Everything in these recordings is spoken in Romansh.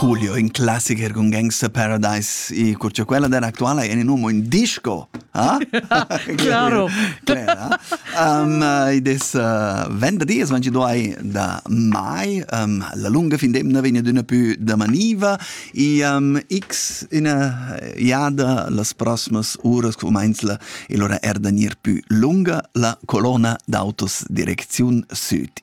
Julio in classicher con Gangster Paradise e cur cha quella d'era actuala è in uomo in disco, ah? Claro. Cler, ah? um, id es uh, venderdi, es 22 da mai, um, la lunga fin d'emna vegn adüna pü damaniva e um, x üna jada las prossimas uras cumainzla e lura er da gnir pü lunga la colonna d'autos direcziun süd.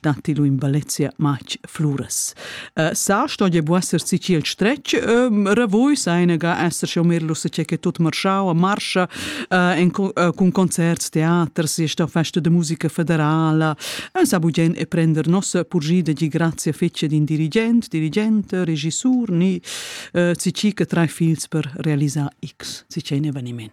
datti lu in Valencia matg fluras. Uh, sa sto je bu esser si ciel stretg, um, revui seinega esser schon mehr lusse che che tut marschau a marscha uh, in, uh, cun concerts, teaters, je sta festa de musica federala, un sa bugen e prender nossa purgida di grazie fece din dirigent, dirigente, regissur, ni uh, si ci che tre fils per realisar X, si c'è un eveniment.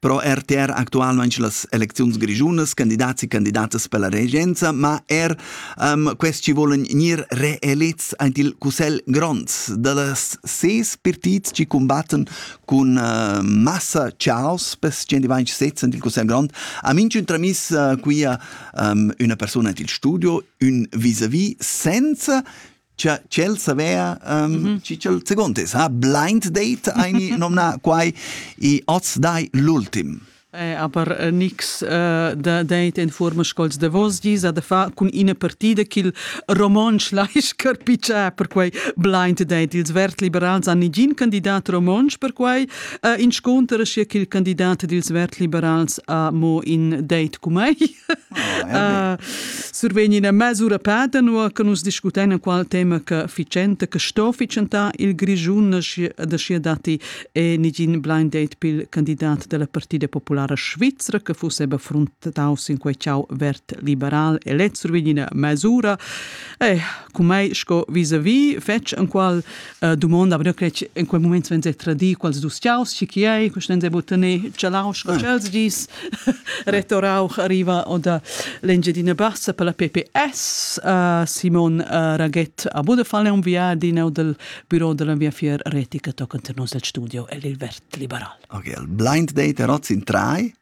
Pro RTR actualmain las elecziuns grischunas, candidats e candidatas per la regenza, ma er um, quest ci volen gnir reelits aint il Cussel Grond. Da las ses partits ci combatten cun uh, massa chaos, pes 126 aint il Cussel Grond, a minchun tramis uh, quia um, una persona aint il studio, un vis-a-vis, senza Cha ch'el savea, um, mm -hmm. chi ch'el second es, ha blind date eine nomna quai i oz dai l'ultim. Eh, aber äh, nix äh, da date in forma scols de vos gis a da fa cun ina partida ch'il romontsch laisch carpiccia per quei blind date ils vert liberals han nigin candidat romontsch per quei uh, inscontera sia ch'il candidat dils vert liberals ha mo in date cu mei Ah, survegn ina mesura peda, nua che nus discutein qual tema che ficenta, che sto ficcentar il Grischun, da scia datti e nigin blind date pil candidat della Partida Populara Svizra che fusse be frontataus in quei ciao vert liberal e lez survegn ina mesura. Eh, cum ei sco vis-a-vis fetg en qual eh, domanda aber crec in quel moment wenn se tradi quals dus tiaus chi chi ei quest ense vo tener chalau sco chels dis retorau arriva oder l'engiadina bassa per la PPS uh, Simon uh, Raget a Budefall un viadin o del bureau della mia fier retica toccant nos del studio el il vert liberal Ok, il blind date er in trai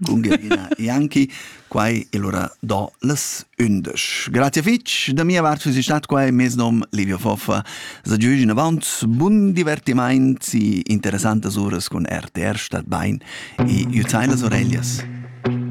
Cun Gergina Janki, quai è l'ura da las undisch. Grazie fitg da mia vart, es stat qua e mes nom Livio Foffa. Sa giugi in avant bun divertimaint e interessantas uras cun RTR statt bain e jutain las oreglias.